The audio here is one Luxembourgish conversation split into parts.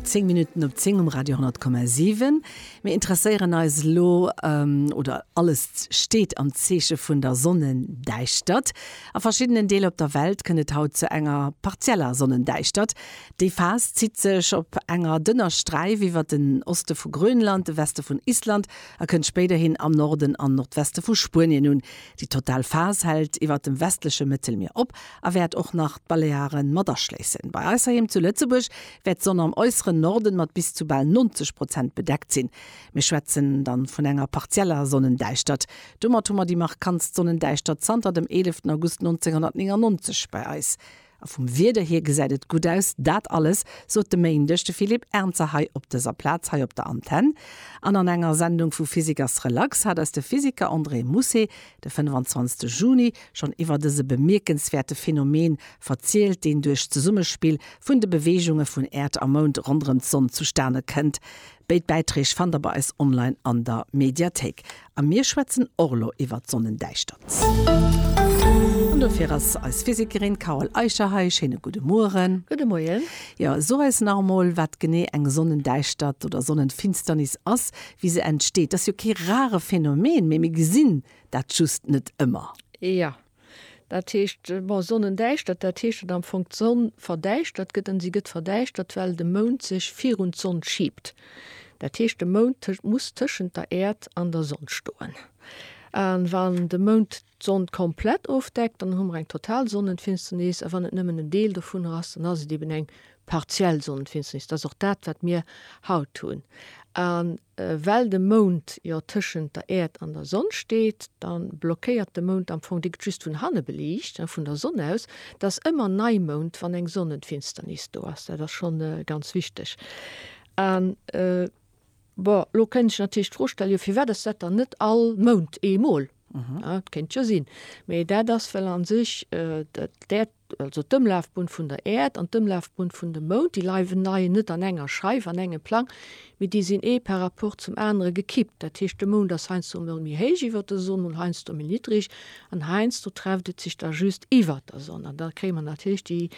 10 Minuten op 10 um Radio 10,7. Mir interesséieren eis lo ähm, oder alles steht am Zeeche vun der Sonnendäischtert. A verschiddenen Deel op der Welt kënnt et haut zu enger partieller Sonnendäischtert. Déi Phas zitt sech op enger dënner Sträif iwwer den Oste vu Grönland, de Weste vun Island a kënnt spéiderhin am Norden an Nordweste vu Spuenien un. Déi total Phas hält iwwer dem westleche Mëttelmier op a wäert och nach d'Balearen mat aschléissen. Bei eis heiheem zu Lëtzebuerg wäert d'Sonn am äusseren Norden mat bis zu bal 90 Prozent bedeckt sinn. Mir schwätzen dann vun enger partieller Sonnendäischtert. Domat hu mer déi markantst Sonnendäischtert zanter dem 11 August 1999 bei eis. A vum Wieder hier gesäit et gutt aus. Dat alles sot de Méindeg de Philippe Ernzer hei op dëser Plaz hei op der Antenn. An an enger Sendung vu Physique ass relax hat eis de Physiker André Mousset De 25 Juni, schonn iwwer dëse bemierkenswäerte Phänomen verzielt, deen duerch d'Zesummespill vun de Beweegunge vun Äerd a Mound ronderëm d'Sonn zustane kënnt. Béid Bäiträg fannt der bei eis online an der Mediathéik. A mir schwätzen och elo iwwer d'Sonnendäischtert. An dofir ass eis Physikerin Carole Eicher hei. Schéine gudde Mueren. Gudde Moien. Jo, so eis nach emol, wat genee eng Sonnendäischtert oder Sonnenfinsternis ass, wéi se entsteet. Dat ass jo kee rare Phänomen, mee mir gesinn dat just net ëmmer. Jo, dat heescht, bon, Sonnendäischtert, dat heescht, datt am Fong d'Sonn verdäischtert gëtt. An si gëtt verdäischtert, well de Mound sech virun d'Sonn schiibt. Dat heescht, de Mound muss tëschent der Äerd an der Sonn stoen. A wann de Mound d'Sond komplett ofdeckt, dann hu mer eng total Sonnenfinsternis, a wann et nëmmen en Deel dovunner ass, dann ass et eben eng partiell Sonnenfinsternis. Dat ass och dat, wat mir haut hunn. A well de Mound jo tëschent der Äerd an der Sonn steet, da blockéiert de Mound am Fong, dee gëtt just vun hanne beliicht, vun der Sonn aus. Et ass ëmmer Neimound, wann eng Sonnenfinsternis do ass. Dat ass schonn ganz wichteg. Bon, elo kéint ech natierlech d'Fro stellen, jo firwat ass dat dann net all Mount eemol? Dat kéint jo sinn. Mee dat ass, well a sech d'Äerd, also d'Ëmlafbunn vun der Äerd an d'Ëmlafbunn vun dem Mount, déi leiwen, leien net an enger Scheif, an engem Plang, mee déi sinn ee par rapport zum anere gekippt. Dat heescht, de Mount ass heiansdo emol méi héich iwwer der Sonn, mol heiansdo méi niddreg an heiansdo trefft et sech da just iwwer der Sonn. An da kréie mer natierlech déi.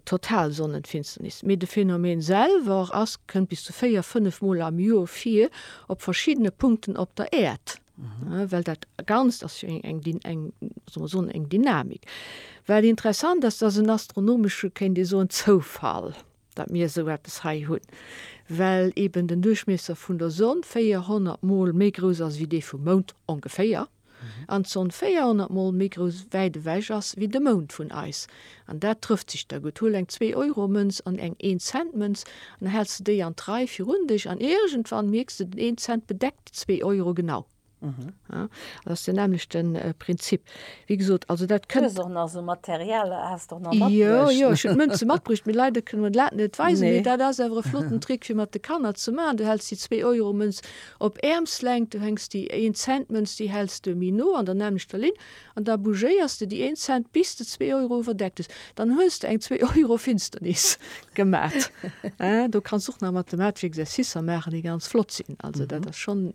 total Sonnenfinsternis, mee de Phänomen selwer ass kënnt bis zu 4, 5 mol am Joer vir op verschiddene Punkten op der Äerd. Mhm. Well dat ganz ass jo eng eng eng so Sonne eng Dynamik. Well interessant ass, dats en astronomesche kéint Dir soen Zoufall, dat mir esou eppes hei hunn, well eben den Duerchmiesser vun der Sonn 400 mol méi grouss ass wéi dee vum Mound, ongeféier. an d'Sonn 400 mol méi grouss wäit ewech ass wéi de Mound vun eis. An dat trëfft sech da gutt. Huel eng Zwee-Euro-Mënz an eng Een-Cent-Mënz an da häls de déi an d'Rei virun dech an iergendwann mierks de, den een Cent bedeckt déi zwee Euro genau. Dat ass den nämmlechte Prinzip. Wéi gesot, also dat kënnt. Du hues och nach esou Material, has de och nach matbruecht. Jo, jo, ech hunn d'Mënze matbruecht, mee leider kënne mer dat net weisen. Mee dat ass awer e flotten Trick, fir mat de Kanner ze maachen. Du häls déi Zwee-Euro-Mënz Op Äermslängt, du hänks déi een Cent Mënz, déi häls de méi no an der nämmlechter Linn, an da bougéiers de déi een Cent bis de zwee Euro iwwerdeckt hues. Dann hues de eng zwee Euro Finsternis gemat. Do kanns och nach mathematesch Exercicer maachen, déi ganz flott sinn. Also dat ass schonn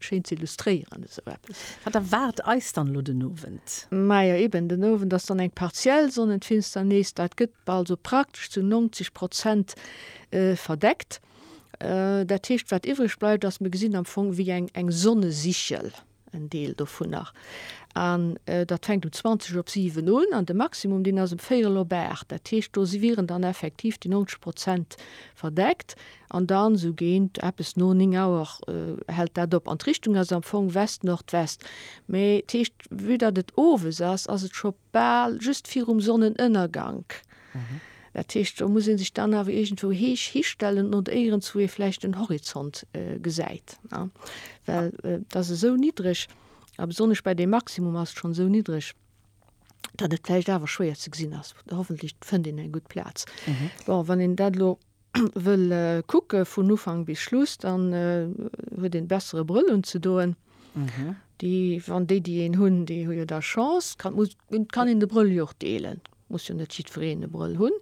schéin ze illustréieren, esou eppes. Wat erwaart eis dann elo den Owend? Majo eben, den Owend ass dann eng partiell Sonnenfinsternis. Dat gëtt also praktesch zu 90 Prozent verdeckt. Dat heescht, wat iwwreg bleift, ass, mir gesinn am Fong wéi eng, eng Sonnesichel, en Deel dovun nach. An dat fänkt um 20 op 7 un an de Maximum, deen ass um véierel op 8. Dat heescht, do si wieren dann effektiv déi 90 Prozent verdeckt an dann esou géint eppes no 9 Auer hält dat op. An d'Richtung ass am Fong West-Nordwest. Mee, dat heescht, vue datt et owes ass, ass et scho Bal just virum Sonnenënnergank. Dat heescht, do muss ee sech dann awer iergendwou héich histellen, nodéierens, wou ee vläicht den Horizont gesäit, ne? Well et ass esou niddreg, a besonnesch bei deem Maximum ass et schonn esou niddreg, datt et vläicht awer schwéier ze gesinn ass. Hoffentlech fënnt een eng gutt Plaz. Bon, wann een dat elo wëll kucke vun Ufank bis Schluss, dann huet een bessere Brëll unzedoen. Déi, wann déi, déi een hunn, déi hu jo da Chance, kann, muss, kann een de Brëll jo och deelen, muss jo net jiddwereen e Brëll hunn,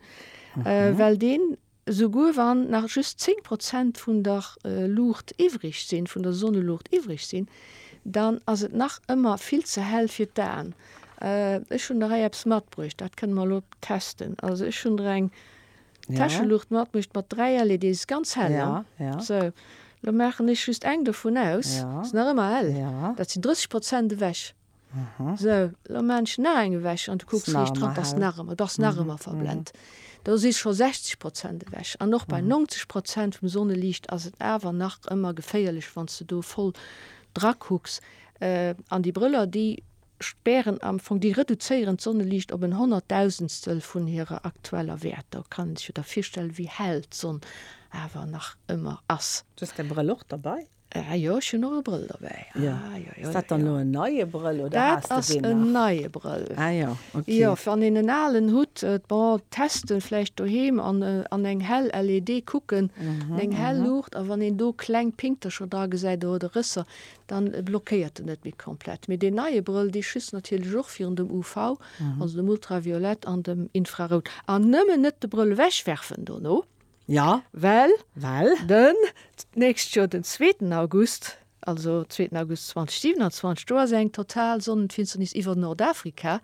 well deen, esouguer wann nach just 10 Prozent vun der Luucht iwwreg sinn, vun der Sonneluucht iwwreg sinn, dann ass et nach ëmmer vill ze hell fir d'Aen. Ech hunn der hei eppes matbruecht, dat kënne mer elo testen. Also ech hunn der eng. Täscheluucht mat mécht mat 3 LEDs ganz hell an. Esou, elo maachen ech just eng dovun aus, ass nach ëmmer hell, dat sinn 30 Prozent ewech. Esou, elo maachen ech nach eng ewech an du kucks riicht dran, ass nach ëmmer, bass nach ëmmer verblent. Do si scho 60 Prozent ewech an och bei 90 Prozent vum Sonneliicht ass et awer nach ëmmer geféierlech, wann s de do voll drakucks. An déi Brëller, déi spären am Fong, déi reduzéieren d'Sonneliicht op en Honnertdausendstel vun hirer aktueller Wäert. Da kann een sech jo da virstellen, wéi hell d'Sonn awer nach ëmmer ass. Du hues däi Brëll och derbäi? Ah jo, ech hunn och e Brëll derbäi. Jo. Ass dat dann elo en neie Brëll oder has de deen nach? Dat ass en neie Brëll. Ah jo, ok. Jo, wann een en alen hutt, bon, testen vläicht doheem an an eng hell LED kucken, an eng hell Luucht, a wann een do kleng Pinktercher dra gesäit oder Rësser, dann blockéiert en net méi komplett. Mee deen neie Brëll, dee schützt natierlech och virun dem UV, also dem Ultraviolett an dem Infrarout. An nëmmen net de Brëll ewechwerfen dono, well den d'nächst Joer den zweeten August, also zweeten August 2027, do ass eng total Sonnenfinsternis iwwer Nordafrika.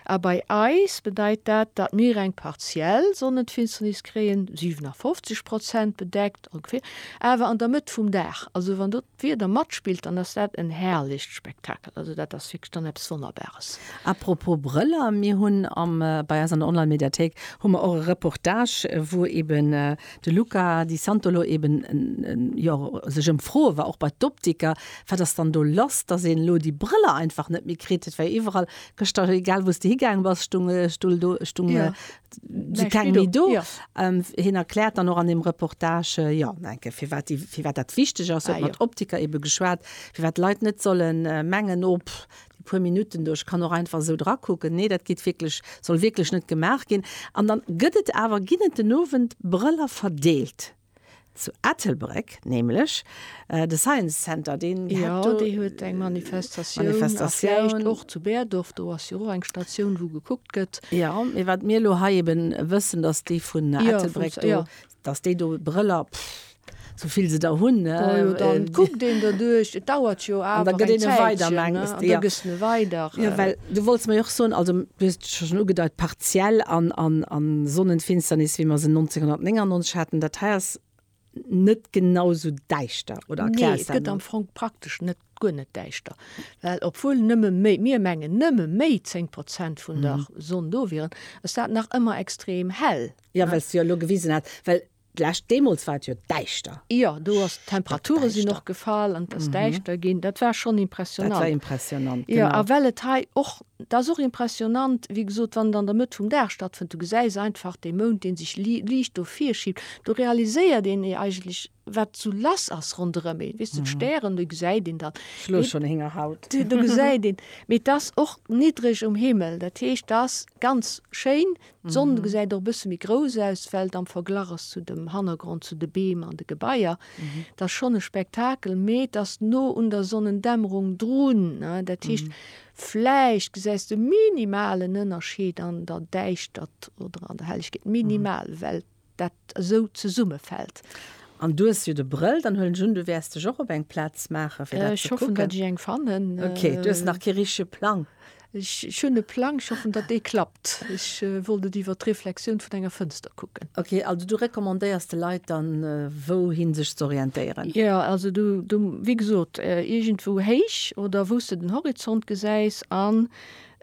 A bei eis bedeit dat, datt mir eng partiell Sonnenfinsternis kréien, 57 Prozent bedeckt ongeféier, awer an der Mëtt vum Dag. Also wann do. Wéi et da matspillt, dann ass dat en herrlicht Spektakel. Also dat ass wierklech dann eppes Wonnerbares. Apropos Brëller, mir hunn am bei eis an der Online-Mediathéik hu mer och e Reportage, wou eben de Luca Di Santolo eben jo sech ëmfroe war, och bei d'Optiker, wat ass dann do lass, dass een elo déi Brëller einfach net méi kritt. Et war jo iwwerall gëschter, egal wou s de higaange bass, stung, stung do, stung, si keng méi do. Hien erkläert dann och an deem Reportage, jo, enke, firwat déi, firwat dat wichteg ass, huet mat Optiker ebe geschwat, firwat d'Leit net solle mengen, oh, pff, déi puer Minutten do, ech kann och einfach esou drakucken. Nee, dat geet wierklech, soll wierklech net gemaach ginn. An da gëtt et awer, ginn et den Owend Brëller verdeelt. Zu Ettelbréck nämlech, de Science Center, deen hätt do. Jo, dee huet eng Manifestatioun. Manifestatioun. A vläicht och zu Berdorf, do ass jo och eng Statioun, wou gekuckt gëtt. Jo, mee wat mir elo hei eben wëssen, datt déi vun Ettelbréck do. Jo, vun. Datt déi do Brëller, pff, sou vill se der hunn, ne. Bon, jo, da kuckt een derduerch. Et dauert jo awer eng Zäitchen, ne. An da gëtt een e weider, mengs de? Jo. An da gëss de e weider. Jo, well Du wollts mei och soen, also du hues et scho schon ugedeit, partiell an, an, an Sonnenfinsternis, wéi mer se 1999 haten, dat hei ass net genau sou däischter, oder erklär eis dat emol. Fong praktesch net, guer net däischter, well obwuel nëmme méi, mir mengen nëmme méi 10 Prozent vun der Sonn do wieren, ass dat nach ëmmer extrem hell. Jo, well s du jo elo gewisen hat, well D'lescht, deemools war et jo däischter. Jo, do ass, d'Temperature sinn och gefall an et ass däischter ginn. Dat war schonn impressionnant. Dat war impressionnant, genau. Jo, a well et hei och, dat ass och impressionnant, wéi gesot, wann et an der Mëtt vum Dag stattfënnt, du gesäis einfach dee Mound, dee sech liicht do virschiebt. Do realiséiert een ee eigentlech, wat sou lass ass ronderëm een. Weess de, d'Stären, déi gesäit een dann. Ech lueche schonn Héngerhaut. Do gesäit een, mee et ass och niddreg um Himmel. Dat heescht, dat ass ganz schéin, D'Sonn gesäit och e bësse méi grouss aus, well et am Verglach ass zu dem Hannergrond, zu de Beem an de Gebaier. Et ass schonn e Spektakel, mee et ass no un der Sonnendämmerung drun. Dat heescht, vläicht gesäis de minimalen Ënnerscheed an der Däischtert oder an der Hellegkeet, minimal, well dat esou zesummefällt. An du hues jo de Brëll, dann huelen ech un du wäers dech och op eng Plaz maachen fir dat ze kucken. Ech hoffen datt ech eng fannen. Ok, du hues nach kee richtege Plang. Ech hunn e Plang, ech hoffen datt dee klappt. Ech wollt et iwwer d'Reflexioun vun enger Fënster kucken. Ok, also du recommandéiers de Leit dann wou hin sech ze orientéieren? Jo, also du wéi gesot iergendwou héich oder wou s de den Horizont gesäis an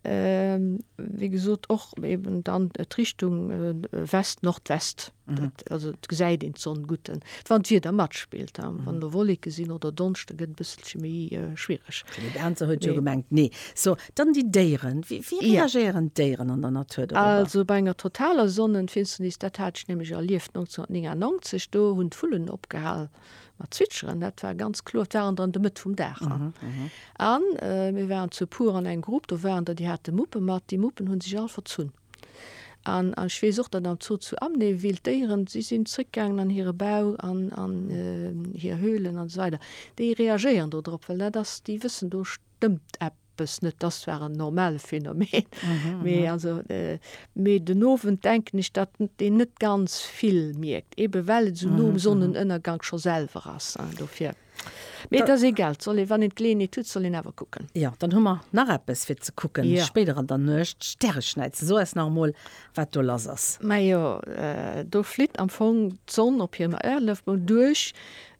Wéi gesot och eben dann d'Richtung West, Nordwest, dat, also et gesäit een d'Sonn gutt, wann d'Wieder matspillt. Wann do Wolleke sinn oder Donschte gëtt e bësselche méi schwiereg. Fir de Ganze huet jo gemengt, nee. So, dann déi Déieren, wéi reagéieren d'Déieren an der Natur dorobber? Also bei enger totaler Sonnenfinsternis, dat hat ech nämlech erlieft 1999, do hunn d'Vullen opgehal, mat Zwitscheren, dat war ganz kloer, dat war an der an der Mëtt vum Dag. An mhm, mhm. äh, mir waren zu pur an eng Grupp, do waren der die hat de Muppe mat, die Muppen hunn sich all verzunn. An an schwee sucht dat am Zoo zu amnee wild Déieren, sie sinn zréckgangen an hire Bau an an äh, hier Höhlen an so weiter. Déi reagéieren do drop, well dat ass déi wëssen do stëmmt App. Eppes net, dass war en normale Phänomen. Mee also, mee den Owend denken ech, datt een net ganz vill mierkt, ebe well et esou no um Sonnenënnergank scho selwer ass. Dofir, mee et ass egal, et soll een, wann een d'Geleeënheet huet, soll een awer kucken. Jo, dann hu mer nach eppes fir ze kucken spéider an der Nuecht, d'Stäreschnäiz. So eis nach emol, wat do lass ass. Majo, do flitt am Fong d'Sonn op hirem Ëerlëftbunn duerch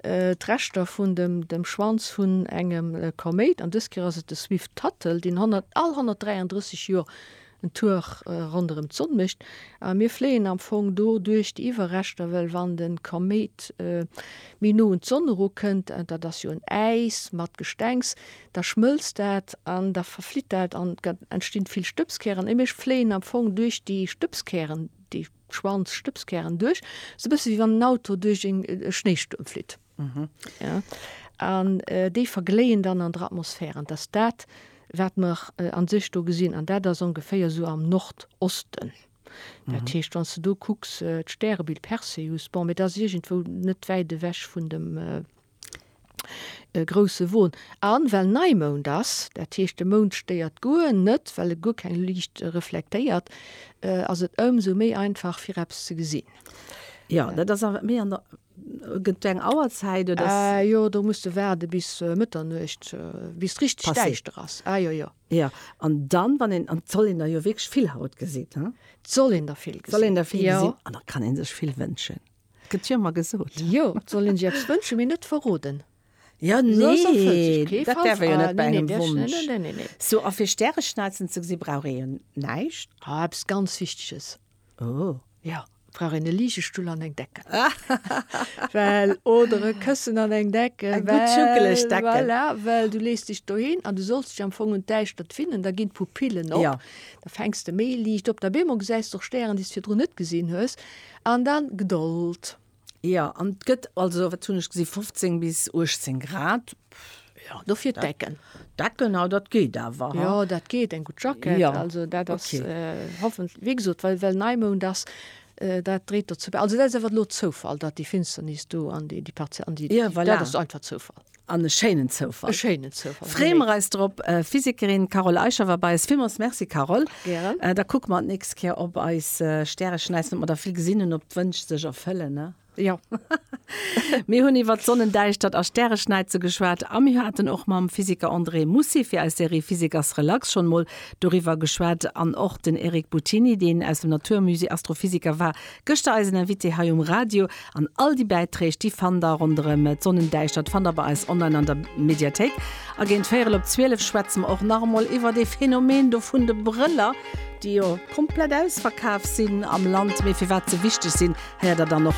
D'Reschter vun dem Schwanz vun engem Koméit, an dës Kéier ass et de Swift-Tuttle, deen all 133 Joer en Tour ronderëm d'Sonn mécht. A mir fléien am Fong do duerch déi Iwwerreschter, well wann de Koméit méi no un d'Sonn eru kënnt, dat ass jo en Äis mat Gestengs, da schmëlzt dat an da verflitt dat an et entstinn vill Stëbskären. A mir fléien am Fong duerch déi Stëbskären, déi. Schwanz, Stëbskären duerch, sou bësse wéi wann en Auto duerch e Schnéistuerm flitt. An déi vergléien dann an der Atmosphär. An et ass dat, wat mer a sech do gesinn. An dat ass ongeféier esou am Nordosten. Dat heescht, wann s de do kucks, d'Stärebild Perseus, bon, mee dat ass iergendwou net wäit ewech vun dem. e grousse Won an, well Neimound ass, dat heescht de Mound stéiert guer net, well e guer keng Liicht reflektéiert, ass et ëmsou méi einfach fir eppes ze gesinn. Jo, dat ass awer méi an der, gëtt do eng Auerzäit oder ass. Aa jo, do muss de waarde bis Mëtternuecht, bis richteg däischter ass. Aa jo, jo. Jo, an dann, wann een, an 't soll een der jo wierklech vill haut gesitt, he? 't soll een der vill gesitt, jo. Soll een der vill gesitt an da kann ee sech vill wënschen. Gëtt jo ëmmer gesot. Jo, soll een sech eppes wënschen, mee net verroden. Jo, nee, dat däerf ee jo net bei engem Wonsch. Sou, a fir Stäreschnalzen ze gesi brauch ee jo näischt. Ah, eppes ganz Wichteges. Oh. Jo, et brauch een e Ligestull an eng Decken. Well, oder e Këssen an eng Decken. Eng gutt juckeleg Decken. Well, voilà, well du lees dech dohin an du solls dech am Fong un d'Däischtert finnen, da ginn d'Pupillen op. Jo. Da fänks de méi liicht op. Op eemol gesäis de och Stären, déi s de virdrun net gesinn hues. An dann Gdold. Jo, an et gëtt also, wat hunn ech gesi, 15 bis 18 Grad. Jo, dofir d'Decken. Decken, ha dat geet awer, ha. Jo, dat geet, eng gutt Jackett. Jo, ok. Hoffen, wéi gesot, well, well Neimound ass, dat dréit dozou bäi. Also dat ass awer elo Zoufall, datt déi Finsternis do an déi, déi partiell, an déi, dat ass einfach Zoufall. An e schéinen Zoufall. E schéinen Zoufall. Freeë mer eis drop. Physikerin Carole Eicher war bei eis. Villmools Merci, Carole. Gären. Da kucke mer d'nächst Kéier op eis Stärechen aus an ob mer der vill gesinn hunn, ob d'Wënsch sech erfëllen. Jo. Mir hunn iwwert Sonnendäischtert a Stäreschnäize geschwat a mir haten och mam Physiker André Mussy fir eis Serie Physiker's Relax schonn emol doriwwer geschwat. An och den Eric Buttini, deen aus dem Naturmusée Astrophysiker war, Gëschter eisen Invité hei um Radio. An all déi Bäiträg, déi fannt der ronderëm d'Sonnendäischtert, fannt der bei eis online an der Mediathéik. A géint véierel op zwielef schwätze mer och nach emol iwwer dee Phänomen do vun de Brëller, déi jo komplett ausverkaf sinn am Land, mee firwat se wichteg sinn, héiert der dann och.